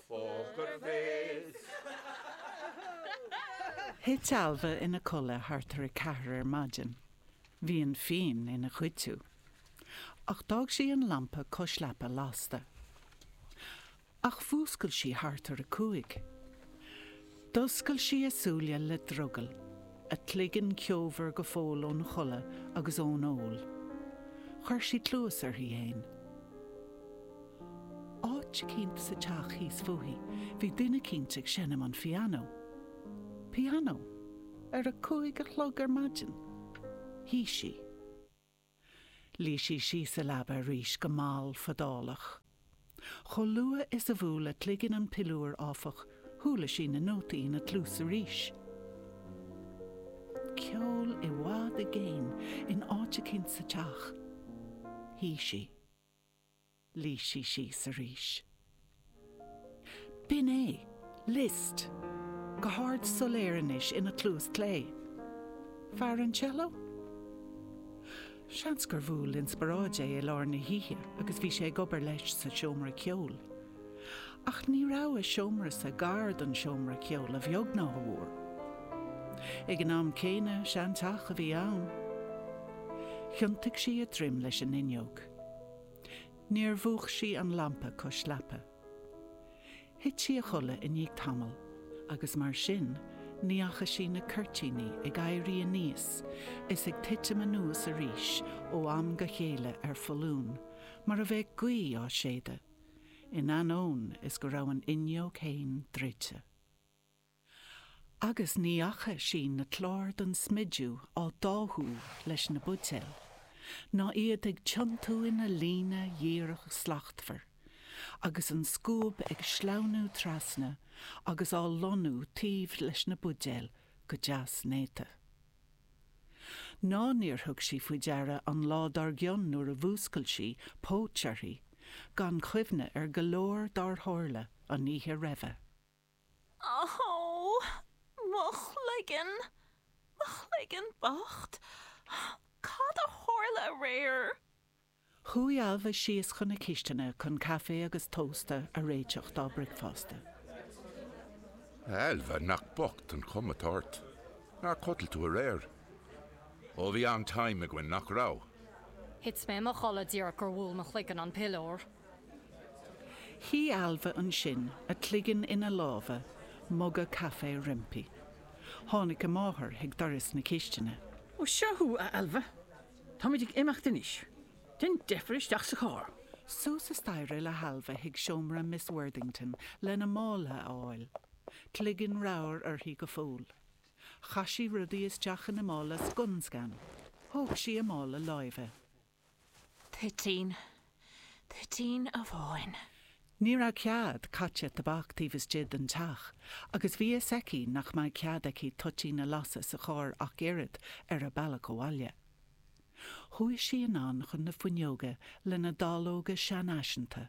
Poker Face! Thit Ailbhe ina codladh thart ar a ceathair ar maidin. Bhí an fíon ina chuidiú. Ach d'fhág sí an lampa cois leapa lasta. Ach mhúscail sí thart ar a cúig. D'oscail sí a súile le drogall, a cloigeann ceomhar go fóill ón chodladh agus ón ól. Chuir sí cluas uirthi fhéin. Áit éigint sa teach thíos fúithi bhí duine éigint ag seinm an phianó. Pianó? Ar a cúig a chlog ar maidin? Shuigh sí. Luigh sí síos sa leaba arís go mall fadálach. Chomh luath is a bhuail a cloigeann an piliúr, áfach, chuala sí na nótaí ina cluas arís. Ceol i bhfad i gcéin in áit éigint sa teach. Shuigh sí. Luigh sí síos arís. B'in é. Liszt. Go hard soiléir anois ina cluas clé. Fear an cello? Seans gur bhuail inspioráid é i lár na hoíche agus bhí sé ag obair leis sa seomra ceoil. Ach ní raibh a seomra-sa gar don seomra ceoil a bheag ná a mhór. Ag an am céanna, seanteach a bhí ann. Thiontaigh sí a droim leis an fhuinneog. Níor mhúch sí an lampa cois leapa. Thit sí a chodladh i ndiaidh tamaill agus mar sin ní fhaca sí na cuirtíní ag éirí aníos is ag titim anuas arís ó am go chéile ar foluain mar a bheadh gaoth á séideadh, in ainneoin is go raibh an fhuinneog fhéin druidte. agus ní fhaca sí na cláir den smidiú á dtáthú leis na buidéil, ná iad ag tiontú ina líne dhíreach slachtmhar, agus an scuab ag sleamhnú trasna agus á lonnú taobh leis na buidéil go deas néata. Ná níor thug sí faoi deara an lá dár gcionn nuair a mhúscail sí póit uirthi, gan chuimhne ar go leor dár tharla an oíche roimhe. Aó, mo chloigeann, mo chloigeann bocht, cad a tharla aréir? Chuaigh Ailbhe síos chun na cisteanadh chun caife agus tósta a réiteach dá bricfeasta. Ailbhe, nach bocht an chuma atá ort. Ar chodail tú aréir? Ó, bhí an-time againn, nach raibh? Thit mé i mo chodladh díreach gur bhuail mo chloigeann an piliúr. Shuigh Ailbhe ansin, a cloigeann ina lámha, muga caife roimpi. Tháinig a máthair chuig doras na cistine. 'Ó, seo thú, a Ailbhe. Táimid ag imeacht anois. Déan deifir isteach sa charr. Suas an staighre le hAilbhe chuig seomra Miss Worthington lena mála a fháil. Cloigeann ramhar uirthi go fóill. Chaith sí rudaí isteach ina mála scun scan. Thóg sí a mála láimhe. Toitín, toitín amháin. Ní raibh cead caite tobac taobh istigh den teach agus bhí a fhios aici nach mbeadh cead aici toitín a lasadh sa charr ach oiread ar a bealach abhaile. Chuaigh sí anonn chun na fuinneoige lena dallóga seanfhaiseanta.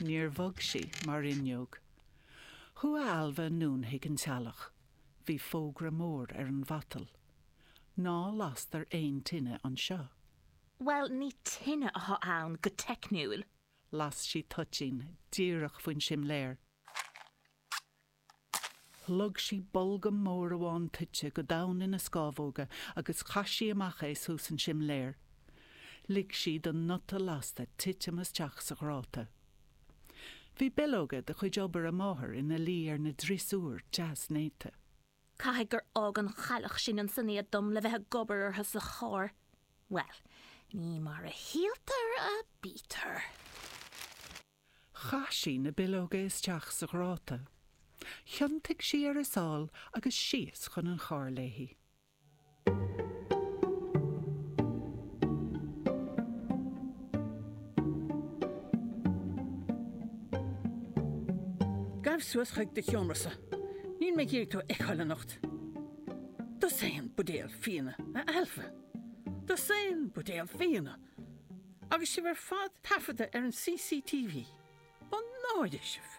Níor bhog sí mar fhuinneog. Chuaigh Ailbhe anonn chuig an teallach. Bhí fógra mór ar an mhatal. Ná lastar aon tine anseo. Bhuel, ní tine atá ann go teicniúil. Las sí toitín díreach faoin simléar. Shlog sí bolgam mór amháin toite go domhain ina scámhóga agus chaith sí amach é suas an simléar. Lig sí don nuta lasta titim isteach sa ghráta. Bhí billeoga de chuid obair a máthar ina luí ar an driosúr deas néata. Caithfidh gur fhág an chailleach sin ansin iad dom le bheith ag obair orthu sa charr. Bhuel, ní mar a shíltear a bítear. Chaith sí na billeoga isteach sa ghráta. Thiontaigh sí ar a sáil agus síos chun an chairr léi. Gabh suas chuig do sheomra-sa. Níl mé ag iarraidh tú a fheiceáil anocht. Dosaen buidéal fíona, a Ailbhe. Dosaen buidéal fíona! Agus sibh ar fad taifeadta ar an CCTV, mo náire sibh?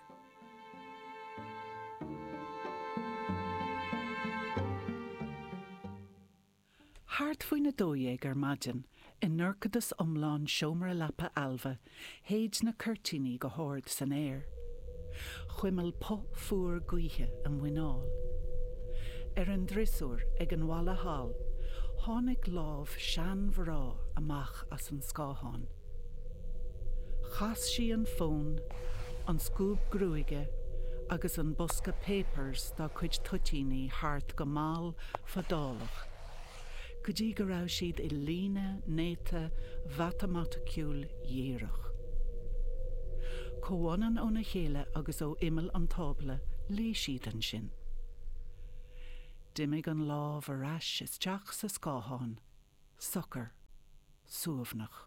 Thart faoin 12 ar maidin, i ndorchadas iomlán seomra leapa Ailbhe, Shéid na cuirtíní go hard san aer. Chuimil puth fuar gaoithe a muineál. Ar an driosúr ag an bhalla thall tháinig lámh seanmhrá amach as an scáthán. Chas sí an fón, an scuab gruaige agus an bosca 'Papers' dá cuid toitíní thart go mall fadálach. go dtí go raibh siad i líne néata mhatamaiticiúil dhíreach. Comhfhad óna chéile agus ó imeall an tábla luigh siad ansin. D'imigh an lámh ar ais isteach sa scáthán, socair, suaimhneach.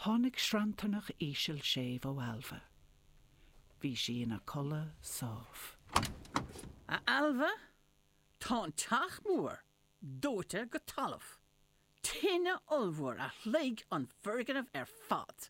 Tháinig sranntarnach íseal séimh ó Ailbhe. Bhí sí ina codladh sámh. A Ailbhe, Tá an teach mór dóite go talamh, tine ollmhór a shloig an foirgneamh ar fad.